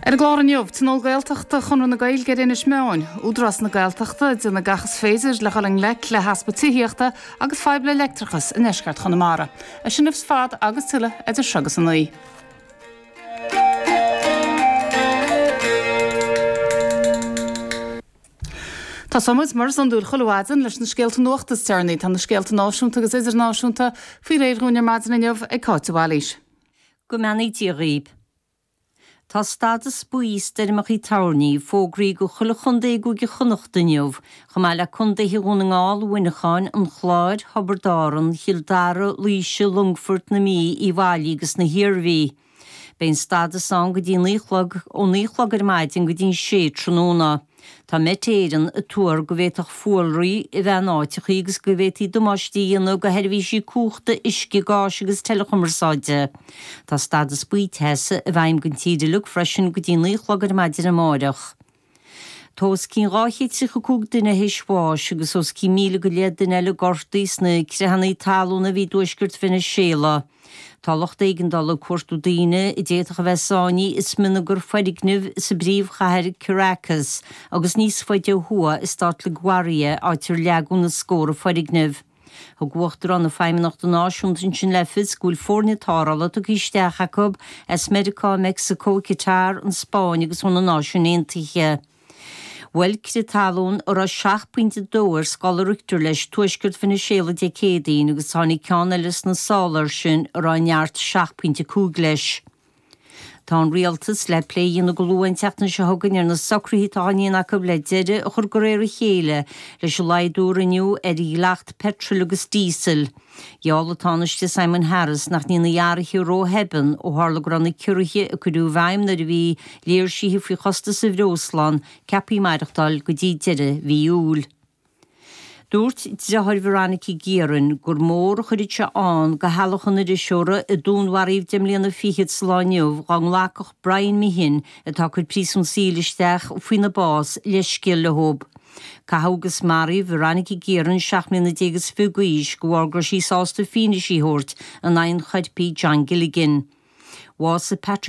Ar an gclár inniu, Tionól Gaeltachta Chonradh na Gaeilge ar Inis Meáin, Údarás na Gaeltachta, ag déanamh gach is féidir le dhul i ngleic le heaspa tithíochta agus fadhbanna leictreachais i ndeisceart Chonamara. Iad sin ar fad agus tuilleadh idir seo agus a naoi. Tosóidh muid mar is iondúil chuile mhaidin leis na scéalta nuachta is deireanaí. Tá na scéalta náisiúnta agus idirnáisiúnta faoi réir dhúinn ar maidin inniu ag Cáit de Bhailís. Go mbeannaí Dia dhaoibh. Tá stadas buí stoirmeacha toirní fógraithe go chuile chondae i gCúige Chonnacht inniu, chomh maith le Condaetha Dhún na nGall, Mhuineacháin, An Chláir, Thiobraid Árann, Chill Dara, Laoise, Longfoirt, na Mí, Uíbh Fhailí agus na hIarmhí. Beidh an stadas ann go dtí 9 a chlog, ó 9 a chlog ar maidin go dtí 6 tráthnóna. Tá Met Éireann ag tuar go bhféadfadh fuarlaigh a bheith in áiteachaí agus go bhféadfaí damáiste a dhéanamh go sheirbhísí cumhachta, uisce, gáis agus teileachumarsáide. Tá stadas buí teasa i bhfeidhm don tír uilig freisin go dtí naoi a chlog ar maidin amárach. Tá os cionn dhá chéad tríocha cúig duine théis bháis agus os cionn míle go leith duine eile gortaithe sna creathanna talún a bhí i dtuaisceart Veiniséala. Tá lucht éigeandála ag cuartú daoine a d'fhéadfadh a bheith sáinní i smionagar foirgneamh sa bpríomhchathair Caracas agus níos faide ó thuaidh i stát La Guaira, áit ar leagadh na scóra foirgneamh. Thug Uachtarán na Feidhmeannachta Náisiúnta ansin le fios go bhfuil foirne tarrthála tugtha isteach acu as Meiriceá, Meicsiceo, Catar, an Spáinn agus ó na Náisiúin Aontaithe. Bhuail crith talún a raibh seacht bpointe dó ar scála Richter leis Tuaisceart Veiniséala Dé Céadaoin agus tháinig ceann eile sna sála air sin a raibh neart seacht bpointe cúig leis. Tá an rialtas le plé a dhéanamh go luath an tseachtain seo chugainn ar na socruithe atá á ndéanamh acu le deireadh a chur de réir a chéile leis an laghdú a rinneadh ar dhleacht peitril agus díosail. Gheall an Tánaiste Simon Harris nach ndéanfaí athruithe róthobann ó tharla go raibh na ciorruithe a cuireadh i bhfeidhm nuair a bhí léirsithe faoi chostas an bhreosla ann ceaptha maireachtáil go dtí deireadh mhí Iúil. Dúirt driotháir Veronica Guerin gur mór a an faoiseamh é do theaghlach an iriseora a dúnmharaíodh deich mbliana fichead sa lá inniu dá nglacfadh Brian Meehan, atá ag cur príosún saoil isteach faoina bás, leithscéal leo. Caitheadh agus maraíodh Veronica Guerin, seacht mbliana déag is fiche d'aois, de bharr go raibh sí sásta fianaise a thabhairt in aghaidh an choirpigh John Gilligan. Bhásaigh Pat.